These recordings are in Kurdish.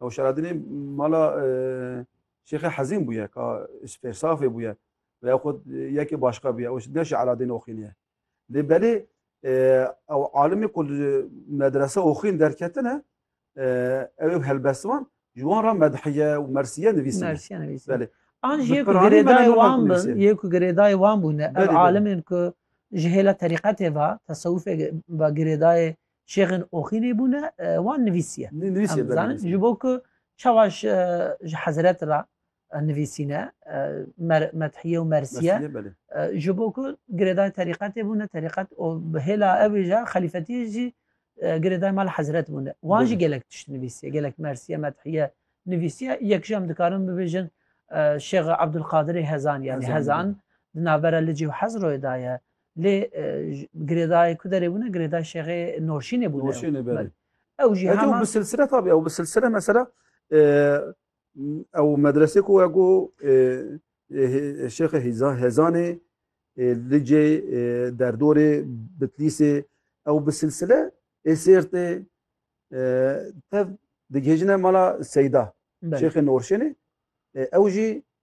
Ew şeradinê mala Şêxê Hezîn bûye ka Spêrsafê bûye ve ew xwe yekê başka bûye ew ne şeradinê oxîniye. Lê belê ew alimê ku li medrese oxîn derketine ew ê helbestvan ji wan re medhiye û mersiye nivîsine. Belê. An ji yê ku girêdayê wan bin, yê ku girêdayê wan bûne ev alimên ku ji hêla terîqetê ve, tesewufê ve girêdayê Şêxên oxî lê bûne wan nivîsiye. Nivîsiye zanin ji bo ku çawa ji hezret ra nivîsîne methiye û mersiye ji bo ku girêdayê terîqetê bûne terîqet û bi hêla evê ja xelîfetiyê jî girêdayê mal hezret bûne. Wan jî gelek tişt nivîsiye gelek mersiye methiye nivîsiye yek jî em dikarin bibêjin Şêx Ebdulqadirê hezan yani hezan di navbera Licî û Hezroyê da ye. Lê girêdayê ku derê bûne girêdayê Şêxê Norşînê bûne. Norşînê berê. Ew jî heman... Ew bi silsile tabi, ew bi silsile mesela ew medresê ku ya ku Şêxê Hezanê Licê Derdorê Bitlîsê ew bi silsile ê Sêrtê tev digihêjine mala Seyda Şêxê Norşînê ew jî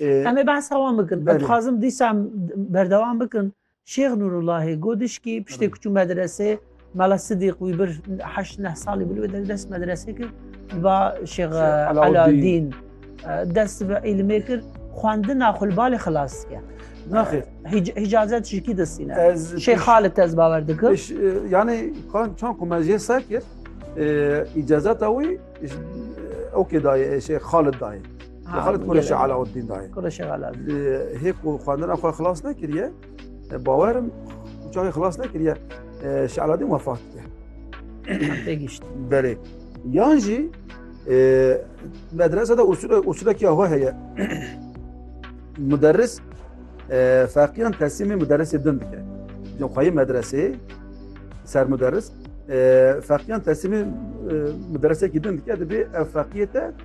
Em ê behsa wan bikin. Ez dixwazim dîsa em berdewam bikin. Şêx Nûrullahê got dişkî piştê ku çû medresê Mela Sidîq wî bir heşt neh salî bû li wê der dest medresê kir ba Şêx Alawdîn dest bi îlimê kir xwendina xwe li balê xilas dike. Naxê hicazet ji kî distîne Şêx Xalid ez bawer dikim. Yanî çan ku me jê ser kir îcazeta wî ew kê dayê Şêx Xalid dayê. Xalid Kureşi Alauddin dayê. Kureşi Alauddin. Hê ku xwendina xwe xilas nekiriye, bawerim çaxê xilas nekiriye, Şi Alauddin wefat diye. Tê gişt. Belê. Yan jî medrese de usulekî awa heye. Muderris feqiyan teslimê muderrisê din dike. Cem xweyê medreseyê ser muderris feqiyan teslimê muderrisekî din dike dibê ev feqiyê te